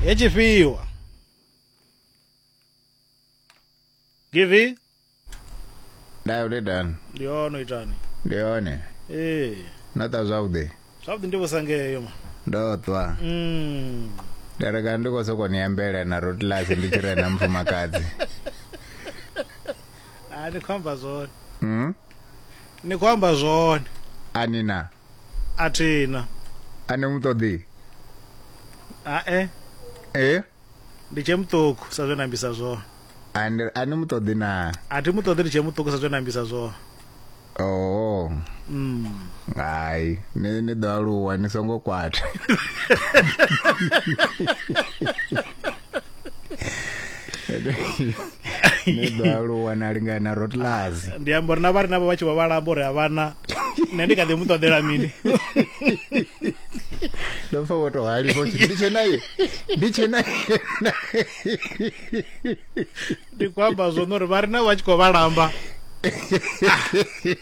He chifhiwa. Givi? ndayo ndi dani Ndi ono itani. ndi yone Eh. nota zwavhuḓi Zwavhuḓi ndi vhusangeyo ma. ndo ṱwa Mm. ndareka ndi khou sokou niyambela na rotlasi ndi tshi rena mufumakadzi Ah ni khou amba zwone. mm? Ni khou amba zwone. anina A thi na. A ni mu ṱoḓi? Hae. E? Ndi tshe muṱuku sa zwe na ambisa zwone. A ni a ni mu ṱoḓi na? A thi mu ṱoḓi ndi tshe muṱuku sa zwe na ambisa zwone. Oh. Mm. Hai, ni ni ḓo aluwa ni songo kwata. ne ḓo aluwa na lingana na rotlazi ndi amba uri na vha ri navho vha tshi vha vhalamba uri havhana nṋe ndi kha ḓi mu ṱoḓela mini ndo pfa wo tou halifha u ndi tshe naye ndi tshe naye ndi khou amba zwone uri vha ri navho vha tshi khou vhalamba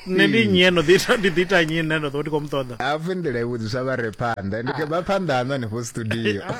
nṋe ndi nnyi eno ndi ḓi ita nnyi nṋe ndo ḓo ndi khou mu ṱoḓa hafhu nḓila i vhudzisa vha re phanḓa ndi ah. vha phanḓa haṋo hanefho studio ah.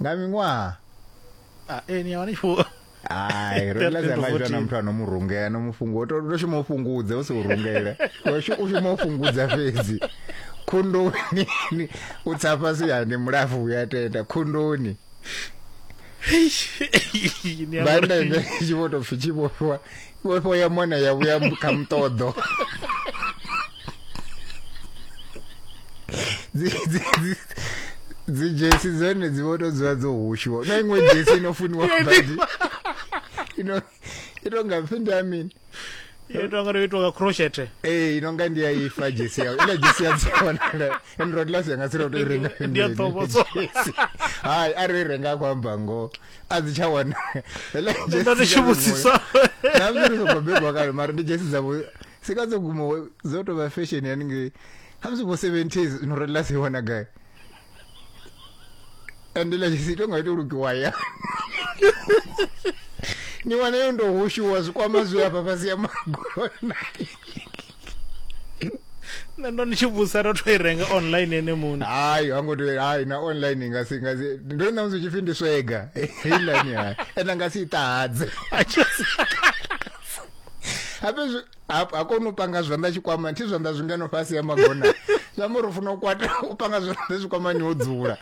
nga miṅwaha a e ni yavha ni tshi ai ro ḽa dza maitwa na muthu ano mu rungea no mufungo to to shuma ufungudze u si u rungele u shuma u shuma ufungudza fhedzi khundoni u tsa fhasi ya ni mulafu ya tenda khundoni banda ine tshi vho to pfi tshi vhofhiwa Vhofho ya mwana ya vhuya kha muṱoḓo. Dzi dzi dzi dzhesi dzone dzi vho to dzula dzo hushiwa. Na iṅwe dzhesi ino funiwa badi. Ino ino nga pfi ndi amini. Yo tonga ro itoka crochet. Eh ino nga ndi ya ifa dzhesi ya. Ila dzhesi ya tsona. Ndo ndo lasi yanga tsira to renga. Ndi ya ṱhokodzo. Hai ari renga kwa mbango. a dzi tsha wana heḽa ndi nga dzi tshi vhudzisa na zwi ri songo bebwa kale mara ndi dzhesi dzavho sika dzo guma dzo tou vha fashion haningei khamusi vho seventies no relela si wana gai ende ḽa dzhesi ito nga ito lukiwa ya ni wana yo ndo hushuwa zwikwama zwi hafha fhasi ya magona nṋe ndo ni tshi vhusa ro to i renga online ene muṋe hayi ha ngo tea hayi na online nga si nga si ndo na musi tshifhi ndi swega heiḽani hayi ene nga si ṱahadze habe ha kona u panga zwanḓa tshikwama thi zwanḓa zwingeno fhasi ya magona zwi amba uri u funa u kwata u panga zwanḓa zwikwamani wo dzula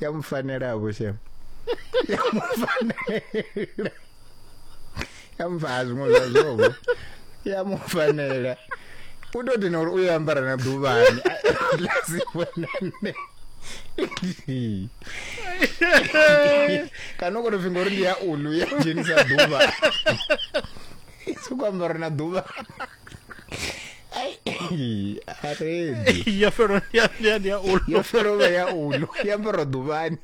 ya mu fanela vho shem ya mu fanela ya mu fa zwiṅwe zwa zwobo ya mu fanela u tou dina uri u ya ambara na ḓuvhani lasivhonane kana u koto finga uri ndi ya ulu ya dzhenisa ḓuvha i sokou ambara na ḓuvha Ai, arendi ya fhelo ndi ya- ndi ya- ndi ya ulo yo fhelovha ya ulo ya ambara ḓuvhani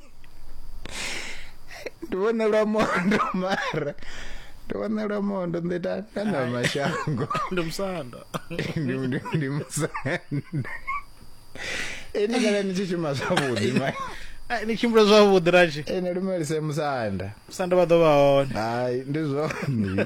ndi vhona lwa mondo mara ndi vhona lwa mondo ndi ta nda na mashango ndi musanda ndi ndi ndi musanda ene kana ni tshi shuma zwavhuḓi ma Ai, ni tshimbula zwavhuḓi rashi ene lumelise musanda musanda vha ḓo vha hone hai ndi zwone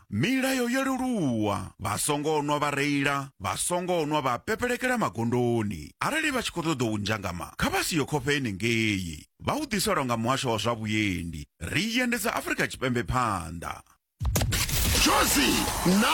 Milayo yo leluwa, vha songo nwa vha reila, vha songo nwa vha pepelekela magondoni. Arali vha tshi khou ṱoḓa u ndzhangama, kha vha si yo khofhe henengei. Vha u ḓiselwa nga muhasho wa zwa vhuendi. Ri endedza Afrika Tshipembe phanḓa. Jozi na